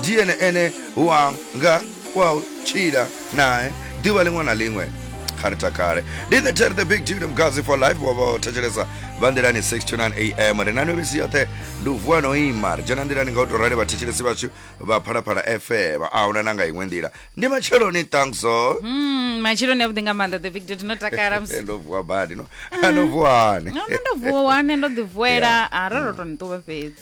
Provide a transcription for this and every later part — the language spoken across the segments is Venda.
ndiye ene ene wanga wa u tshila nae ḓuvha ḽiṅwe na ḽiṅwe kha ri takale ndi the ter the big dude mgazi for life wa vha thetshelesa vha nḓilani 629 am ri na novhisi yoṱhe ndi u vuwa no ima ri dzhena nḓilani nga u tou rali vhathetshelesi vhashu vha phalaphala fm a huna na nga iṅwe nḓila ndi matsheloni thankso Mm, matsheloni avhuḓi nga maanḓa the big dude no takala mus- ndo vuwa badi no no vuwani no no ndo vuwa wane ndo ḓi vuela a ro ro to ni ṱuwa fhedzi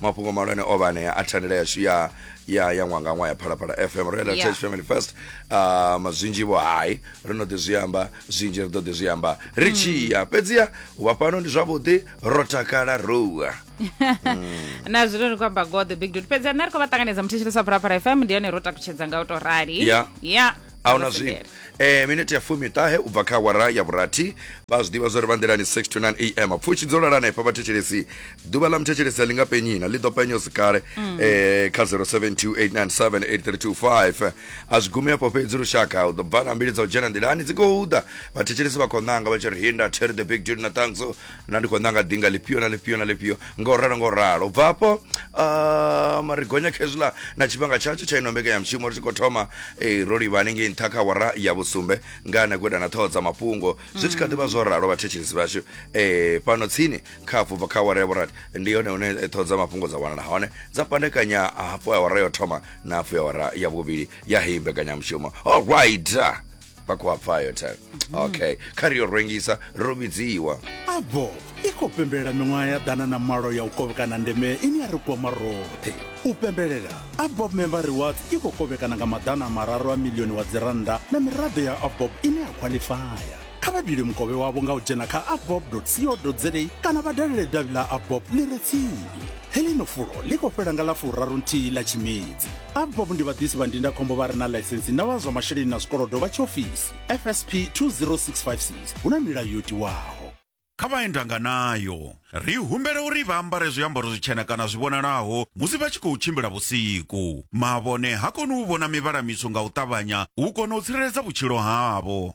mafhungo malwane o vha anea a thandela yashu ya ya ya ṅwangaṅwa ya phalaphala fm ro yela church family first um zwinzhi vho hai ri no ḓi zwi amba zwinzhi ri ḓo ḓi zwi amba ri hmm. tshi ya fhedziha u vha fhano ndi zwavhuḓi ro takala rowa hmm. na zwino ri khou amba god the big dot fhedzi nṋe ri khou vha ṱanganedza muthetshelesi wa phalaphala fm ndi yone ro takutshedza nga u tou rali ya a huna zwino Masengere. e, miniti ya fumi ṱahe u bva kha wara ya vhurathi vha zwi ḓivha zwa uri vha nḓilani 6 to 9 am pfushi dzo lala hanefha vhathetshelesi ḓuvha ḽa muthetshelesi a ḽi nga penyina ḽi ḓo penya zwi kale Mm. eh, kha 0728978325 a zwi gumi afho fhedzi lushaka u ḓo bva na mbili dza u dzhena nḓilani dzi khou ḓa vhathetshelesi vha khou ṋanga vha tshi ri hinda terry the big dude na tanso na ndi khou nanga dinga lifhio na lifhio na lifhio nga u ralo nga u ralo u bva afho um, ri gonya khezula na tshifhinga tshatsho tsha ino mbekanya mushumo ri tshi khou thoma eh, ro livha hanengei nṱha kha wara ya vhusumbe nga na guda na ṱhoho dza mafhungo zwi tshi kha ḓivha zwo ralo vhathetshelesi vhashu eh, fhano tsini kha afho bva kha wara ya vhurati ndi yone hune eh, ṱhoho dza mafhungo dza wanala hone dza pandekanya hafho ya wara yo thoma na hafho ya wara ya vhuvhili ya heyi mbekanyamushumo allright vha khou a pfa yo than okay kha ri yo rwengisa ro vhidziwa abo i khou pembelela miṅwaha ya ḓana na malo ya u kovhekana ndeme ine ya ri kwama roṱhe u pembelela abob member rewards i khou kovhekana nga maḓana a mararu a milioni wa dzirannda na miraḓo ya abob ine ya khwaḽifaya kha vha dule mukovhe wavho nga u dzhena kha abob co za kana vha dalele davhi ḽa abob ḽi re tsini heḽino fulo ḽi khou fhela nga ḽa furaru nthihi ḽa tshimedzi abvop ndi vhaḓisi vha ndindakhombo vha re na ḽaisensi na vha zwa masheleni na zwikolodo vha tshiofisi fsp 20656 hu na milayo yo tiwaho kha vha endanga nayo. Ri humbela uri vha ambare zwiambaro zwitshena kana zwi vhonalaho musi vha tshi khou tshimbila vhusiku. Mavhone ha koni u vhona mivhala mitswu nga u ṱavhanya u kona u tsireledza vhutshilo havho.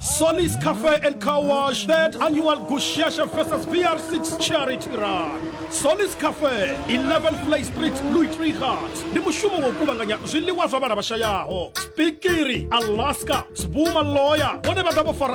Solis Cafe and Car Wash, third annual Gushesha versus BR6 charity run. Solis Cafe, 11 Play Street, Louis Trichardt. Ndi mushumo wa u kuvhanganya zwiḽiwa zwa vhana vha shayaho. Spikiri, Alaska, Sbuma Lawyer, vhone vha ḓa vho fara